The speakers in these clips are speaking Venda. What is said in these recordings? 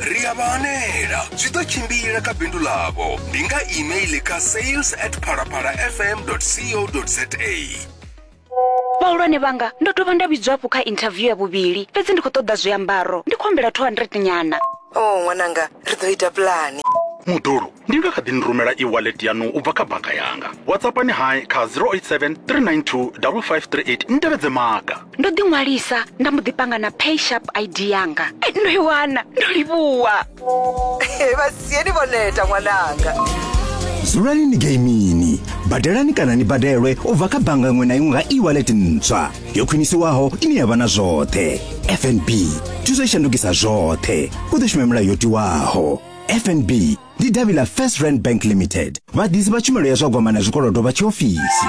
ri a vha hanela zwi ḓo tshimbila kha bindu ḽavho ndi nga email kha sales at phalaphala fm co za vhahulwane vhanga ndo dovha nda vhidzwa hafhu kha interview ya vhuvhili fhedzi ndi khou ṱoḓa zwiambaro ndi khou humbela 200 nyana o oh, ṅwananga ri ḓo ita pulani muḓulu ndi nga kha ḓi ni rumela e-wallet yaṋu u bva kha bannga yanga whatsappani hai kha 087 392 5538 ni tevhedze maga ndo ḓi ṅwalisa nda mbo ḓi panga na pay sharp id yanga eh, ndo i wana ndo livhuwa eh, vhasieni vho neta ṅwananga dzulani ni geimini badelani kana ni badelwe u bva kha bannga ṅwe na iṅwe nga e-wallet ntswa yo khwinisiwaho ine ya vha na zwoṱhe fnb thuso i shandukisa zwoṱhe u ḓo shuma milayo yo tiwaho fnb ndi davhi ḽa first rand bank limited vhaḓisi vha tshumelo ya zwa gwama na zwikolodo vha tshiofisi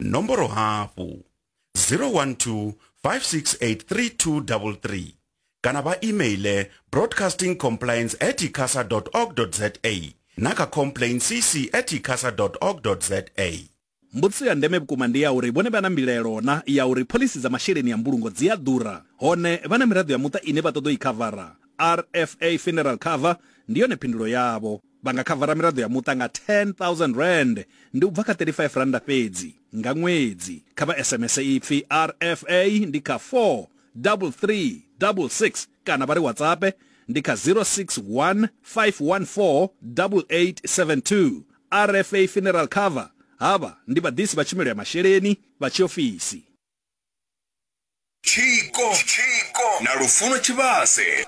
nomboro hafhu 012 5683233 kana vha emaile broadcasting compliance at icasa org za na kha complain cc at icasa org za mbudziso ya ndeme vhukuma ndi ya uri vhone vha na mbilelo na ya uri phoḽisi dza masheleni ya mbulungo dzi a ḓura hone vha na miraḓo ya muṱa ine vha ṱoḓa i khavara rfa funeral cover ndi yone phindulo yavho Vha nga khavara miraḓo ya muṱa nga R10,000, ndi u bva kha R35 fhedzi, nga ṅwedzi. Kha vha SMS ipfi RFA ndi kha 43366 kana vha ri WhatsAppe ndi kha 061 514 8872. RFA Funeral Cover, Havha ndi vhaḓisi vha tshumelo ya masheleni vha tshiofisi. Tshiko na Lufuno Tshivhase.